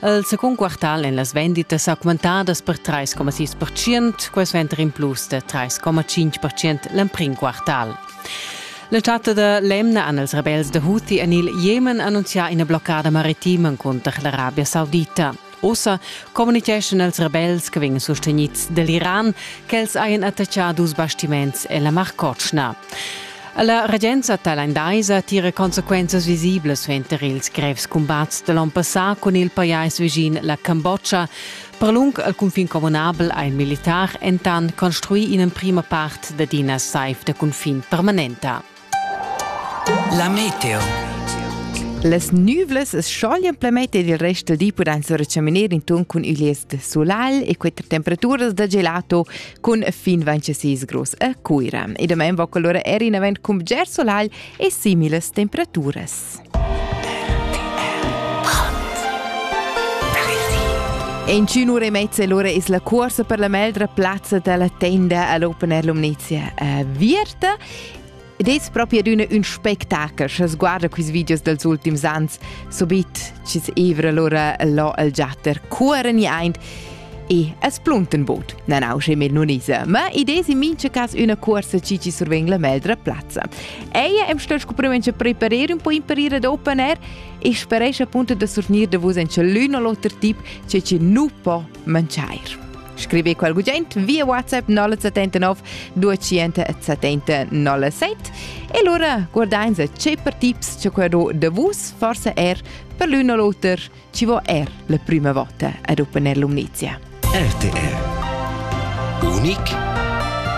El secund quartal en las venditas augmentadas per 3,6%, quest venter in plus da 3,5% l'emprim quartal. La chatta da l'emna han els rebels da Houthi en il Jemen annunzià ina bloccada maritima cunter l'Arabia Saudita. Ussa communitgeschan els rebels che vegnan sustenids dall'Iran ch'els hajan attaccà dus bastiments e la Mar Cotschna. La regenza tailandaisa tira consequenzas visiblas suenter ils grevs cumbats da l'onn passà cun il pajais vischin la Cambodscha. Per lung al cunfin communabel ha il militar entant construì in'emprima part dad ina saiv da cunfin permanenta. La meteo. Las nüvlas s-choglian plameter il rest del di pudan surchaminar inton cun üglies de solal e quatter temperaturas da gelato cun fin 26 grus a Cuira. E damain va quell'ora er in avent cun bger solagl e similas temperaturas. In cun ura e mezza l'ora es la corsa per la meldra plazza dalla tenda all'Open Air Lumnezia a Vierta Ed es propi adüna ün spectakel scha sguarda quist videos dals ultims ans, subit chi's evra lura là al giatter cuoren aint e es plunten bod nan ausche med nonisa. Ma ideis in mincha cas üna cuorsa chi chi survegn la meldra plazza. Eia am sta scuprimaint cha preparer un po imparire ad open air e speresce appunto da surgnir da vus en l'un o l'oter tip che chi nu po mangiair. Scrivi qual gugent via WhatsApp 079 270 07 e lura guardains ce per tips che quello de vus forse er per l'un o l'oter ci vo er la prima volta ad Open Air Lumnizia. RTR. Unic